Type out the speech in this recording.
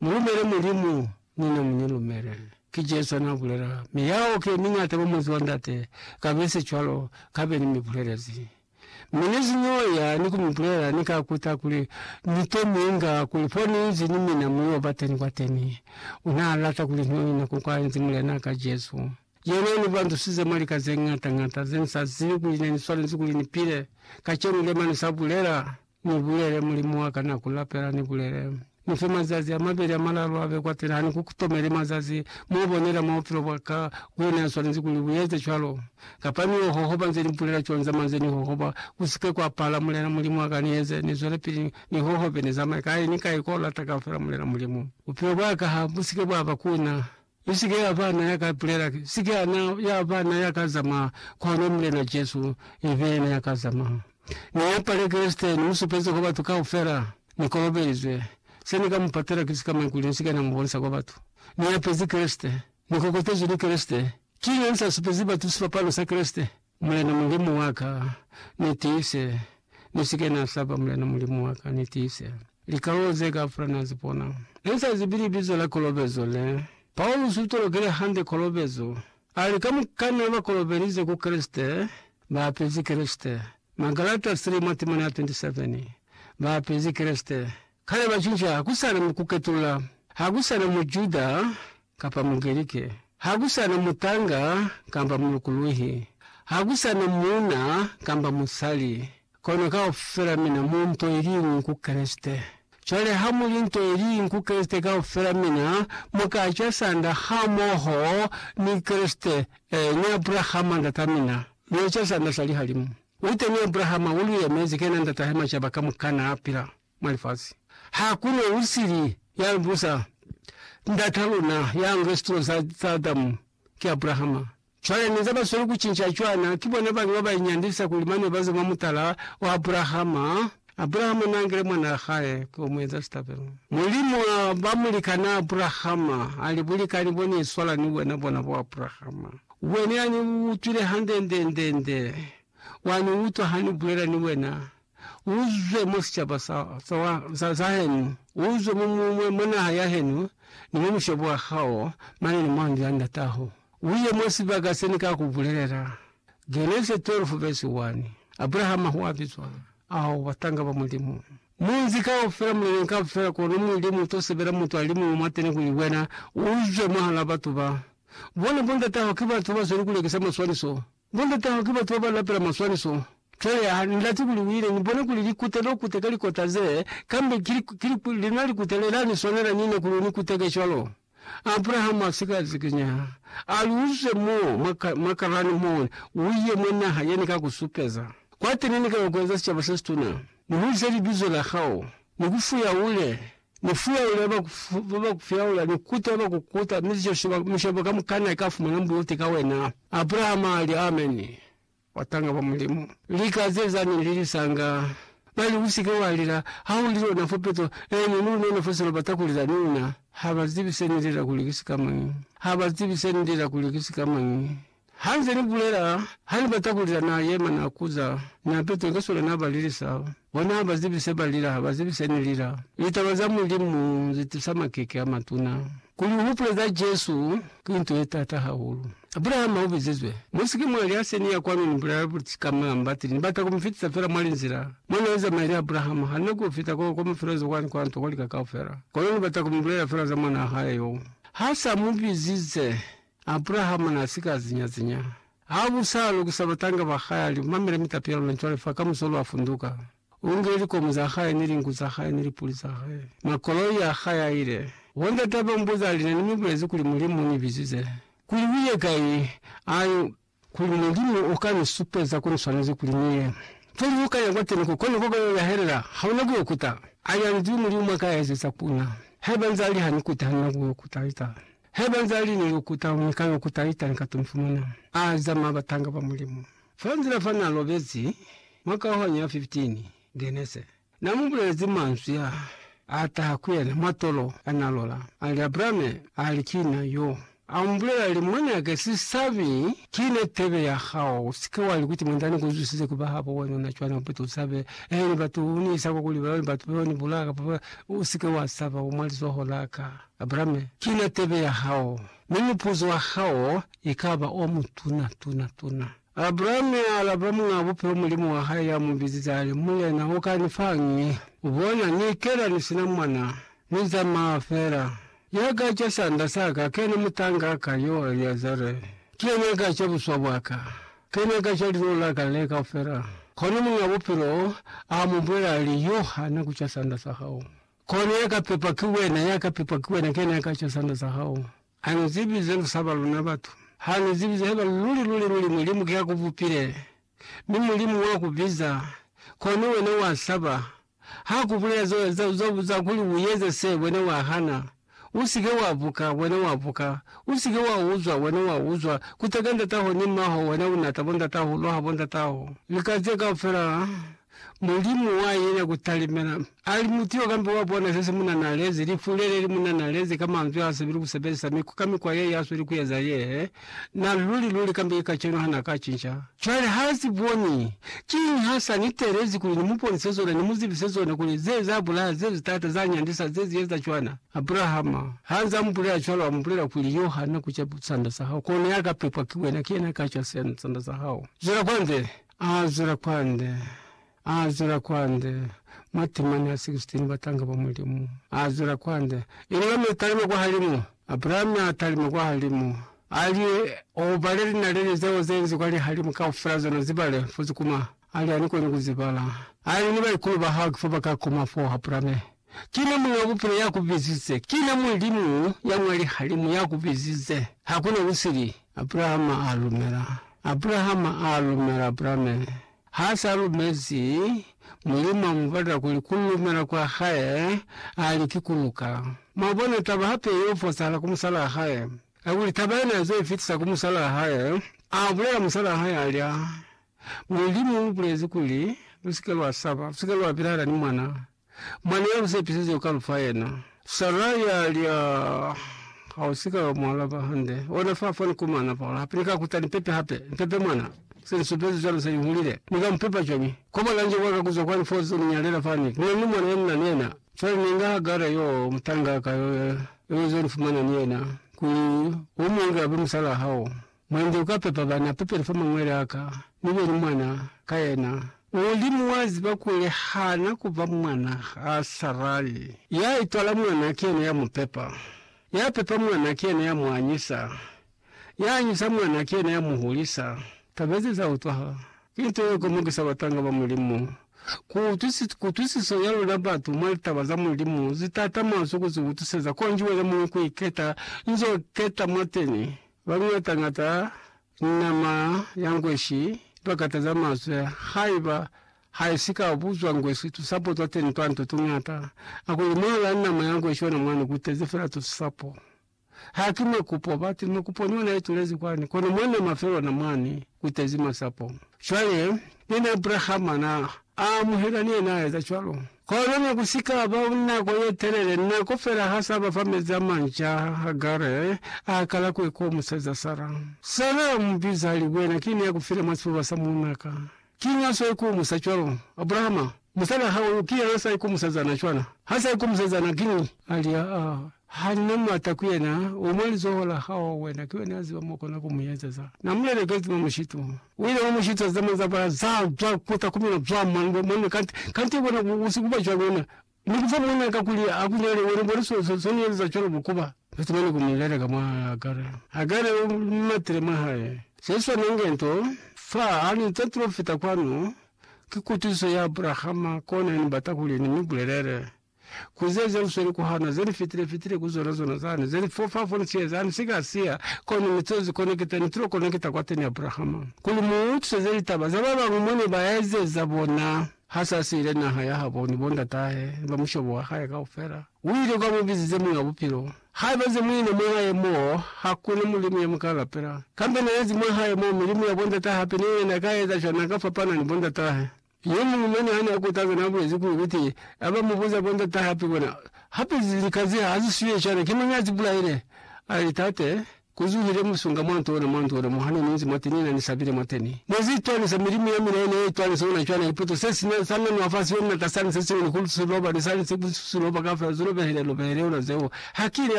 Mu lumele Mulimu, ni na mu ni lumele. Ki Jesu ya n'a bulela. Mi yao ki ye miñata kwa Muzi wa Ndate, kabesi cwalo, ka be ni mi bulelezi. Mi ni si n'o ya ni ku mi bulela, ni ka kuta kuli ni to mi inga, kuli fo ni inzi ni mina mu y'o ba teni kwateni. U n'a lata kuli n'o ina ko kwa inzi Mulen'a ka Jesu. Yena u ni bandusize mwa lika ze ñata-ñata ze ni sa zibi kuli ne ni swanezi kuli ni pile. Kacenu, Lemani sa bulela, Ni bulele, Mulimu wa ka, na ku lapela, ni bulele, Ni fe mazazi a mabeli a malalu a be kwa pila, ha ni ku tomeli mazazi mo bonela mwa bupilo bwa ka, ku ne ha swanezi kuli u eze cwalo. Kapa ni yo hohoba nze ni bulela cwalo, ni zamaya nze ni hohoba, ku si ke kwa pala, Mulena Mulimu wa ka, ni eze, ni zwelepili ni hohobe, ni zamaye kai ni kai ko lata kaufela, Mulena Mulimu. Bupilo bwa ka ha bu si ke bwa ba ku na. Mi sike ya ba na ya ka ipulela, sike ya na ya ba na ya ka zamaya, kono Mulena Jesu ibe yena ya ka zamaya. Ni yapale Kreste, ni mu supeze kwa batu kaufela, Ni kolobelizwe. Se ni ka mu patela ki sika maikuli ni sike na mu bonisa kwa batu. Ni yapezi Kreste. Ni kokotezwi ni Kreste. Ki nani sa supezi batu sipapalo sa Kreste? Mulena Mulimu wa ka, ni tiise, ni si ke na saba, Mulena Mulimu wa ka, ni tiise. Likalolo ze kaufela na zi bona. Ni sa zibi libizo la kolobezo le. Paulusi u tolokile hande kolobezo. A li, Kamukana ba kolobelize ku Kreste, ba apezi Kreste. Magalata 3 mwa temana ya 27. Ba apezi Kreste. Kale Bajuda ha ku sa na mukuketula, ha ku sa na Mujuda kapa Mugerike, ha ku sa na mutanga kamba mulukuluhi, ha ku sa na muuna kamba musali, kono kaufela mina mu nto iliñwi ku Kreste. Cwale ha mu li nto iliñwi ku Kreste, kaufela mina mu ka ca sanda hamoho ni Kreste, ee, ni Abrahama ndatamina, lu eca sanda sa lihalimu. U teni Abrahama u lu yemezi, kena ndatahe macaba kamukana a pila. mwa lifasi. Ha ku na u sili ya busa ndata luna ya nge situlo za, za Adamu, ki Abrahama. Cwale ne za ba sweli ku cinca cwana, ki bona bani ba ba inyandisa kuli mane ba ze mwa mutala wa Abrahama. Abrahama na ngile mwana wa hae ku yo mu eza sitabelo. Mulimu a ba mulikana Abrahama, a li, Bulikani bo ni iswala ni wena bona bo, Abrahama. Wena ya ni utwile hande nde, nde, nde. Wa ni utwa ha ni bulela ni wena. uzwe mwa sicaba sa, sa, wa, sa, sa henu, uzwe mu, mu, mwa, mwa naha ya henu, ni mwa mushobo wa hao, mane ni mwa ndu ya ndataho, uye mwa sibaka se Ni ka ku bulelela. Genese 12 vesi 1. Abrahama hua bizwa, ao batanga ba Mulimu. Munzi kaufela, muleleni kaufela, kono Mulimu uto sebela mutu alimuñwi mwateni kuli wena uzwe mwahal'a batu ba. Bona bo ndataho ki batu bazweli kulekisa maswaniso, Ni lutaho ki batu baba lapela maswaniso. Cwale ha ni lati kuli u ile ni bone kuli likute lo kute ka likota ze, kambe ki, ki, ki lina likute le la ni swanela nina kuli u ni kuteke cwalo. Abrahama a sika zikinya, a li, U zwe mo mwa, mwa Karani mone, u ye mwa naha ye ni ka ku supeza. Kwateni ni ka yo ku eza sicaba se situna, ni hulise libizo la hao, ni ku fuya ule, Ni fuyaula ya ba ku ba ba ku fuyaula, ni kuta ya ba ku kuta, mi zico sheba mishebo kamukana ika fumana mbuti ka wena. Abrahama ali, Ameni, batanga ba Mulimu. Lika ze zani li lisanga. Bali, Usike wa lila, ha u lilo na fo peto, eeni, ni unona fo selo bata ku lila ni una. Ha ba zibi se ni lela kuli ki sikamañi. Ha ba zibi se ni lela kuli ki sikamañi. Ha nze ni bulela, ha ni bata ku lila na yema na kuza, na petwa ke sona na balilisa. Bona ha ba zibi se ba lila, ha ba zibi se ni lila. Litaba za Mulimu zi tusa makeke a matuna. Kuli u hupule za Jesu ki nto ye taata hahulu. Abrahama u bizizwe, Mu si ke mwa liha se ni ya kwanu ni bulela buti ka malambati. Ni bata ku mi fitisa fela mwa linzila mo na yo zamaya ni Abrahama. Ha ni na ku yo fita ko, ko mafelo a zokwa ni kwa nto, kwa lika kaufela. Kono ni bata ku mi bulela fela za mwanaa hae yo ha sa mu bizize. Abrahama n'a si ka zinya-zinya. Ha bu sa lukisa batanga ba hae, a li, Mamela mitapi ya luna cwale fa, kamuso lwa funduka. U ngile likomo za hae, ni linku za hae, ni lipuli za hae, mwa koloi ya hae, a ile. Wo ndata ba mbuza, a li, Na ni mi bulezi kuli Mulimu u ni bizize kuli u ye kai, a li, Kuli Mulimu u ka ni supeza ku ni swanezi kuli ni ye. Pili lu ka ya kwa Teneko, kono koba yo ya helela, ha una ku yo kuta. A li anzwi Mulimu mwa ka ya ezeza ku na. Haiba nza li ha ni kute, ha nina ku yo kuta ita. Haiba nza li ni yo kuta, ni ka yo kuta ita, ni ka to ni fumana. A zama batanga ba Mulimu. Fa nzila fa na lobezi, mwa kauhanyo ya 15, Genese. Na mu bulelezi manzwi a a taha ku yena mwa tolo, a nalola, a li, Abrame, a li, Ki na yo. A mu bulela, a li, Mwanake, si sabi, ki na tebe ya hao. U si ke wa li kuti, Mwandani, ku zwisize ku ba habo wena una cwana upeta u sabe, ee, ni batu, u ni isa kwa kuli ba, batu ba ni bulaya kapa ba, u si ke wa saba, u mwa lizoho la ka. Abrame, ki na tebe ya hao, mi mupuzo wa hao i ka ba o mutuna, tuna, tuna. Abraham ya alaba Muñ'a Bupilo Mulimu wa hae ya mu bizize a li, Mulena, u ka ni fa'ñi? U bona, ni ikela ni si na mwana. Ni zamaa fela. Ya ka ca sanda sa ka, kena mutanga a ka, yo Eliazare. Ki yena a ka ca buswa bwa ka. Kena a ka ca lilolo la ka le kaufela. Kono Muñ'a Bupilo a mu bulela, a li, Yo hana ku ca sanda sa hao. Kono ya ka pepwa ki wena, ya ka pepwa ki wena, kena a ka ca sanda sa hao. Ha nu zibi ze lu saba luna batu. Ha nu zibi ze heba luli, luli, luli Mulimu ki ya ku bupile, mi Mulimu wa ku biza, kono wena wa saba. Ha ku bulela za, za, za, za kuli u eze se, wena wa hana. U si ke wa buka, wena wa buka. U si ke wa uzwa, wena wa uzwa. Kuteka ndataho ni maho, wena u nata bondatahulu ha bondataho. Lika ze kaufela Mulimu wa yena ku talimela. Ali mutu yo kambe wa bona zesi muna nalezi, lifu lele li muna nalezi ka manzwi a sebeli ku sebelisa miku ka mikwa ye ya sweli ku eza ye he na luli luli kambe ki kacenu ha na ka cinca. Cwale ha si boni. Kiñi ha sa ni teelezi kuli ni mu bonise zona, ni mu zibise zona kuli ze za bulaha, ze zi taata, za nyandisa, ze zi eza cwana? Abrahama, ha nza mu bulela cwalo, a mu bulela kuli, Yo ha na ku ca sanda sa hao, kono ya ka pepwa ki wena, ki yena ya ka ca sanda sa hao. Zwela kwanzele. A zwela kwande, a zwela kwande, matimani a 16 batanga ba Mulimu. A zwela kwande, inga mi talima kwahalimu. Abrahami a talima kwahalimu, a li, O bale linaleli zeo ze nzi kwa lihalimu kaufela, zona zi bale, fo zikuma. A li, Ani koni ku zi bala. A li, Ni baikulu ba hao ki fo ba ka kuma foo, Abrahame. Kina Muñ'a Bupilo ya ku bizize. Kina Mulimu ya mwa lihalimu ya ku bizize. Hakuna kusili. Abrahama a lumela. Abrahama a lumela. Abrahame ha sa lumezi, Mulimu a mu batela kuli ku lumela kwa hae, a li, Ki ku luka. Mwabona, taba hape y'o fosahala ku musalaa hae. Kakuli taba yena ya zwa ifitisa ku musalaa hae, a bulela musalaa hae, a li, A Mulimu u bulezi kuli, Lu si ke lwa saba, lu si ke lwa pilahala ni mwana, Mwana ya lu sepisizwe u ka lu fa yena. Sara ya li, Aa, ha u si ka mu alaba hande. Ona fa, fa ni kumana fa ora. Hape ni ka kuta ni pepe hape. Ni pepe mwana. Se ni supezi cwalo se ni hulile. Ni ka mu pepa cwañi? Kwa mwana nje wa ka kuzwa kwani fo zo ni nyalela fani. Ku na ni mwana ye ni na ni yena. Cwale ni inga Hagara yo, mutangaka yo, yo zo ni fumana ni yena, kuli u mu inge abe musalaa hao. Mwande uka pepa bana pepeli fa mangwele aka, mi beni mwana ka yena. Mulimu wa ziba kuli hana kuba mwana ha Sarai. Ya itwala mwana ki yena ya mu pepa. Ya pepa mwana ki yena ya mu anyisa. Ya anyisa mwana ki yena ya mu hulisa. Taba ze za utwaha. Ki nto ye komokisa batanga ba Mulimu. Ku utwisiso ya luna batu mwa litaba za Mulimu zi tatama zu ku zi utuseza konji wena muñwi ku iketa nzo keta mwateni. Baluñata-ñata ni nama ya ngweshi iba kata za mazwe haiba ha i si ka buzwa ngweshi tusapo twa teni twa nto tuñata. A kuli mwahala a nama ya ngweshi ona mwani ku tezi fela tusapo. Ha ki makupo, bati, makupo ni ona i tulezi kwani, kono mwa nama fela ona mwani ku tezi masapo. Cwale, nina Abrahama na a amuhela ni yena a eza cwalo. Kono ne ku si ka ba nako ye telele, nako fela ha s'a ba fa mezi a manca, Hagare a kala ku ekomuseza Sara. Sara a mu biza a li, Wena ki ne a ku file mwa sifuba sa muuna ka. Kiñi a s'a ikumusa cwalo? Abrahama, musali wa hao yo, ki yena a s'a ikumuseza na cwana. Ha s'a ikumuseza na, kiñi? A li, Aa. Hali na m'ata ku yena, u mwa lizoho la hao, wena ki wena ya ziba m'o kona ku mu ezeza. Na mu lelekezi mwa mushitu. U ile wa mu shiteza mazabala za zwa ku takumela zwa manwe, manwe kanti, kanti ye bona ku, ku si ku ba cwalo na. Mi ku fa mwan'a ka kuli a ku nyale, wena u bone so, so, so ni ezeza cwalo ku ba. Lu tumani ku mu leleka mwa Hagare. Hagare u matile mwa hae. Se swana inge nto, fa, ha ni nto tilo fita kwanu, ki kutusiso ya Abrahama, kona ya ni bata kuli ni mi bulelele. ku ze ze usweli ku hana, ze ni fitile fitile ku zona zona zani, ze ni fofa fo ni sieza, ni si ka siya, kono ni to zi konekita, ni tulo konekita kwateni Abrahama, kuli mu utwiseze litaba za ba bañwi mo ne ba ezeza bona. Ha sa siile naha ya habo ni bo ndatahe, ni ba mushobo wa hae kaufela, u ile kwa mu bizize Muñ'a Bupilo. Haiba ze mu ina mwa hae mo, ha ku na mulimu ye mu ka lapela, kambe na ezi mwa hae mo, milimu ya bo ndatahe hape, ni yena na ka eza cwana, na ka fapana ni bo ndatahe. Yo muñwi mwa ni hane a kutaza na bulezi kuli kuti ha ba mu buza bo ndata hape bona, Hape lika ze ha zi swiye cwale, ki mañi a zi bulaile? A li, Tate, ku zuhile musunga mwa nto ona, mwa nto ona mo ha ne ni nzi mwateni na ni sabile mwateni. Ne zi itwanisa, milimu ya mina ye ne ya itwanisa ona cwale. Liputo se si na, sa nanwa fa siyo ni lata sani se siñwi ni ku si loba, ni sani se ku si loba kaufela, zi lobehile, lobehile ona zeo. Ha ki ne.